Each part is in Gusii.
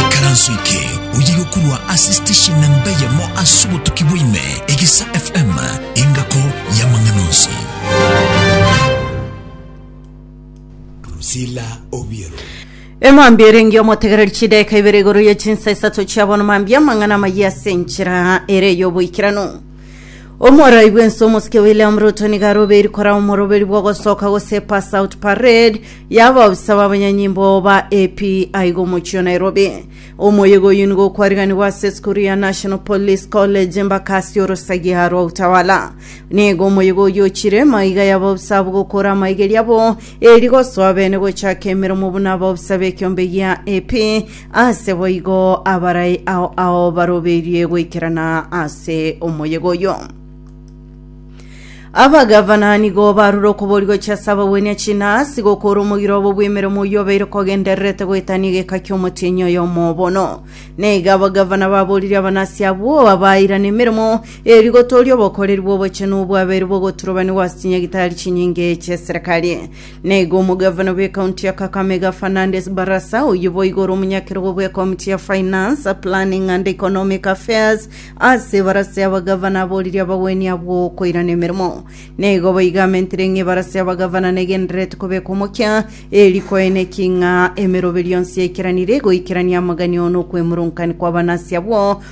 Ikaranso eke oye yokorwa ase station namba eyemo ase obotuki bwaime Egesa FM engako y'amang'ana onsi. Drusilla Obiero. emambia erenge omotegereri chidaeka ibere igoro ye chinsa isato chiabono mambia amang'ana amayia ase enchera ere y'oboikeranu Omoroi bw'ense omosike William Ruto nigo arobeiri korao omoroberi bw'ogosoka gose pass out parade y'abaobisa b'abanyanyimbo ba AP aiga omochio Nairobi. Omoyega oyio nigo okwariganigwa ase esukuru ya National Police College embaka ase orosagia rwa Utawala. Nigo omoyega oyio ochire maiga y'abaobisa abwo gokora amaigeri abo eri gosoa bene gochaka emeremo buna abaobisa b'ekeombe gia AP Aase boigo abarai ao ao barobeirie goikerana ase omoyega oyo. Abagavana nigo barure okobori gochia ase abagwenia chinasi gokora omogiro obo bw'emeremo oyio obeire kogendererete goetania egeka ki'omotienyi oyomo bono. Neiga abagavana baboririe abanasi abwo abairane emeremo eri gotooria obokoreri bw'obochenu obwabeire bogoturobanigwa ase chinyagitari chinyinge chi'eserekari. Na igo omogavana bw'ekaunti ya Kakamega Fernandes Barasa, oyio boigo ore omonyakerogo bw'ekomiti ya Finance, Planning and Economic Affairs ase ebarasa y'abagavana aboririe abagwenia abwo koirana emeremo. Na igo boigo amentire ng'a ebarasa y'abagavana negendererete kobeka omokia, eri koeneki ng'a emeroberio yonsi yaikeranirie goikerania amagani oo nokwemurunkan kw'abanasi abwo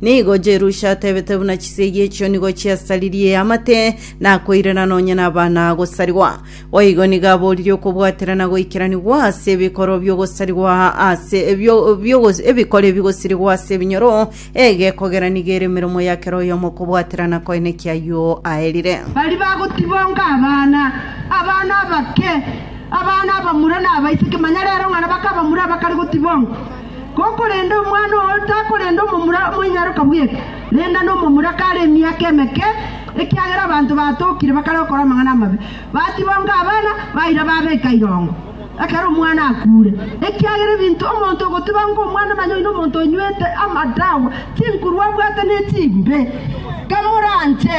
Nigo Jerusha atebete buna chisegi echio nigo chiasaririe amate, nakoirera nonya nabana gosarigwa. Boigo nigo aboririe okobwaterana goikeranigwa ase ebikoro bi'ogosarigwa ase bio- bi'ogos- ebikoro ebigosirigwa ase ebinyoro, egekogera nigo ere emeremo ya kera oyomo okobwaterana koene ki'ayio aerire. Baria bagotibonga abana, abana abake, abana abamura na abaiseke, manya rero ng'a nabake abamura abakare gotibongwa. Ko korende omwana oo takorenda omomura omoinyaroka bweka, renda nomomura kare emiaka emeke, ekiagera abanto batokire bakare gokora amang'ana amabe, batibonga abana, baira babeka irongo, ekero omwana akuure. Ekiagera ebinto omonto ogotibanga omwana onye oino omonto onywete amadawa, chinkuru abwate ne chimbe. Kamoranche.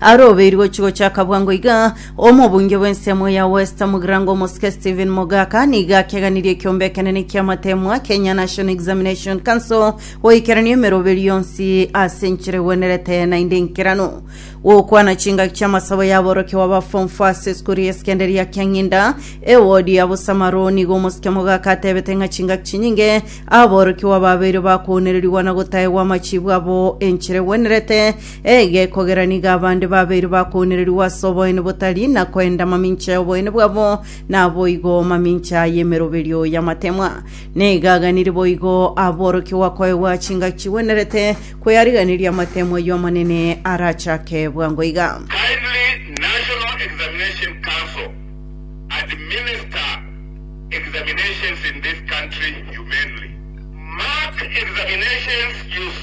Arobeirwe gochi-gocha kabwango iga, omobunge bw'ensemo ya West Mugirango Omosike Stephen Mogaka nigo akeganirie ekiombe ekenene ki'amateemwa, Kenya National Examination Council, goikerania emeroberi yonsi ase enchera egwenerete naende enkeranu. Gokwana chingaki chi'amasabo y'aborokia b'aba Form Four ase esukuru ya esekenderia ya Kiang'inda, ewodi ya Busamaro, nigo Omosike Mogaka atebete ng'a chingaki chinyinge aborokiwa babeire bakounererigwa na gotaegwa amachiibu abo enchera egwenerete, Ege kogera nigo abande babeire bakounererigwa ase oboene botari na koenda amamincha y'oboene bwabo, naboigo mamincha y'emeroberio y'amatemwa. Nigo aganire boigo aborokigwa koegwa chingaki chigwenerete kweyariganiria amatemwa y'Omonene arachake bwango iga. Kindly National Examination Council administer examinations in this country humanely. Mark examinations use.